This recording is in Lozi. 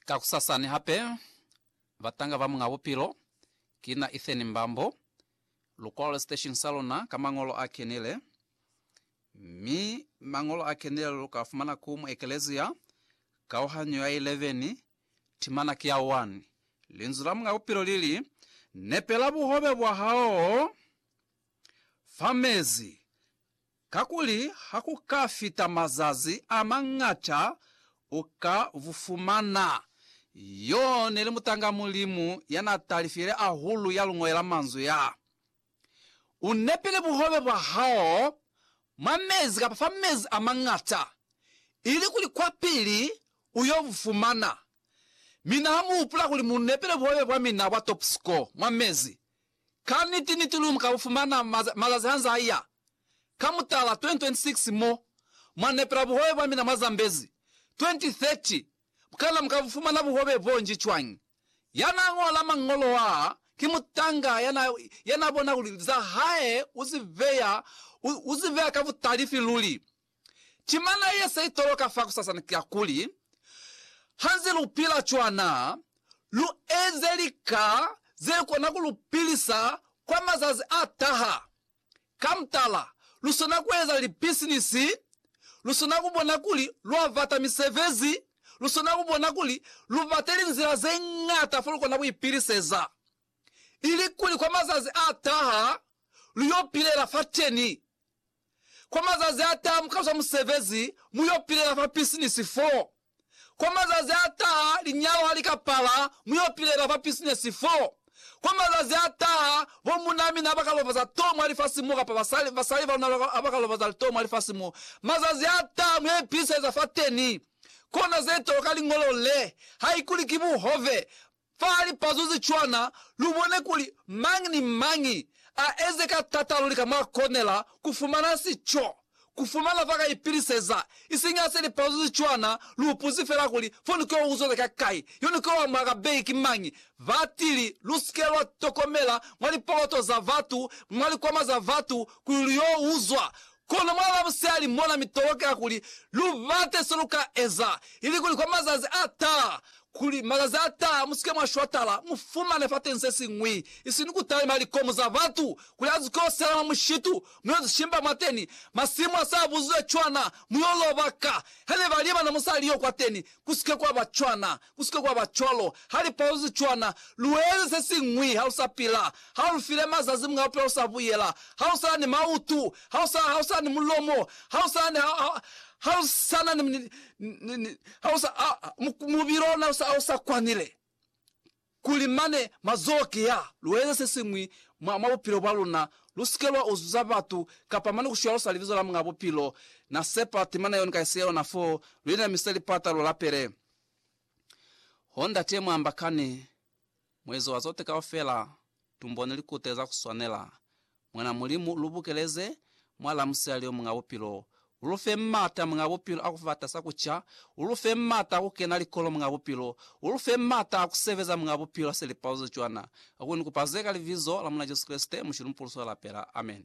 Ka kusasani hape, batanga ba Muñ'a Bupilo, kina Ethan Mbambo, lu kwale siteshini sa luna ka Mañolo a Kenile. Mi Mañolo a Kenile lu ka fumana ku mu ekelezia, kauhanyo ya 11, timana ki ya 1. Linzwi la Muñ'a Bupilo li li, Nepela buhobe bwa hao fa mezi. Kakuli ha ku ka fita mazazi a mañata u ka bu fumana. Yo ne li mutanga Mulimu ya n'a talifile ahulu ya lu ñolela manzwi ya, U nepile buhobe bwa hao mwa mezi kapa fa mezi a mañata, ilikuli kwapili u y'o bu fumana. Mi n'a mu hupula kuli, Mu nepile buhobe bwa mina bwa top score mwa mezi. Ka niti-niti lu ka bu fumana mazazi ha nz'a ya. ka mutala 2026 mo mwa nepela buhobe bwa mina mwa Zambezi 2030 Kana mu ka bu fumana buhobe boo nji cwañi? Ya n'a ñola mañolo aa ki mutanga ya n'a ya n'a bona kuli za hae u si beya u, u si beya ka butalifi luli. Timana ye se itoloka fakusasana ki ya kuli, Ha nze lu pila cwana, lu eze lika ze kona ku lu pilisa kwa mazazi a taha. Ka mutala, lu swana ku eza lipisinisi, lu swana ku bona kuli lwa bata misebezi, lu swana ku bona kuli lu bate linzila ze ñata fo lu kona ku ipiliseza, ilikuli kwa mazazi a taha lu yo pilela fateni. Kwa mazazi a taha mu ka zwa musebezi, mu yo pilela fa pisinisi foo. Kwa mazazi a taha, linyalo ha li ka pala, mu yo pilela fa pisinesi fo. Kwa mazazi a taha, bo munaa mina ha ba ka lobaza too mwa lifasi mo, kapa basali, basali ba luna ha ba ka lobaza too mwa lifasi mo. Mazazi a taha, mu yo ipiliseleza fateni. Kona ze tolwa ka liñolo le, haikuli ki buhove. Fa lipazo ze cwana, lu bone kuli mañi ni mañi a eze ka tata luli ka mwa konela ku fumana si co ku fumana fa ka ipiliseza, isiñi ha se lipazo ze cwana. Lu ipuzi fela kuli, Foni keo u zole ka kai? Yone keo a mwa ka beki ki mañi? Batili, lu si ke lwa tokomela mwa lipoloto za batu, mwa likwama za batu, kuli lu yo uzwa Kono mwa Lavusihali mona mi tolokela kuli lu bate se lu ka eza, ilikuli kwa mazazi a taha, kuli mazazi a taha mu si ke mwa shwatala, mu fumane fateni se siñwi, isini ku talima likomu za batu, kuli a zikosela mwa mushitu, mu yo zishimba mwateni, masimu a sa buziwe cwana, mu yo loba ka. Hane ba libana musali yo kwateni, ku si ke kwa ba cwana. Ku si ke kwa ba cwalo. Ha li palozi cwana, lu eze se siñwi. Ha lu sa pila. Ha lu file mazazi mwa bupilo, lu sa buyela. Ha lu sa na ni mautu. Ha lu sa, ha lu sa na ni mulomo. Ha lu sa na ni, ha, ha, ha lu sa na ni, ni, ni, ni, ha lu sa, ha, ha, mubili ona u sa, u sa kwanile. Kuli mane, mazoho ki ya. Lu eze se siñwi mwa, mwa bupilo bwa luna. Lu si ke lwa uzuza batu, kapa mane ku shwalosa Libizo la Muñ'a Bupilo. Na sepa temana yeo ni ka isiya yona foo, lu inamise lipata, lu lapele. Ho Ndate Muambakani, Muezo wa Zote Kaufela, Tumbone likute za kuswanela. Mwan'a Mulimu, lu bukeleze mwa la musela lio Muñ'a Bupilo. U lu fe m'ata, Muñ'a Bupilo, a ku fata sa ku ca. U lu fe m'ata a ku kena likolo, Muñ'a Bupilo. U lu fe m'ata a ku sebeza, Muñ'a Bupilo, ha se li paluze cwana. Kakuli ni kupa ze ka Libizo la Mulena Jesu Kreste, Mushilumpulusi wa lapela. Amen.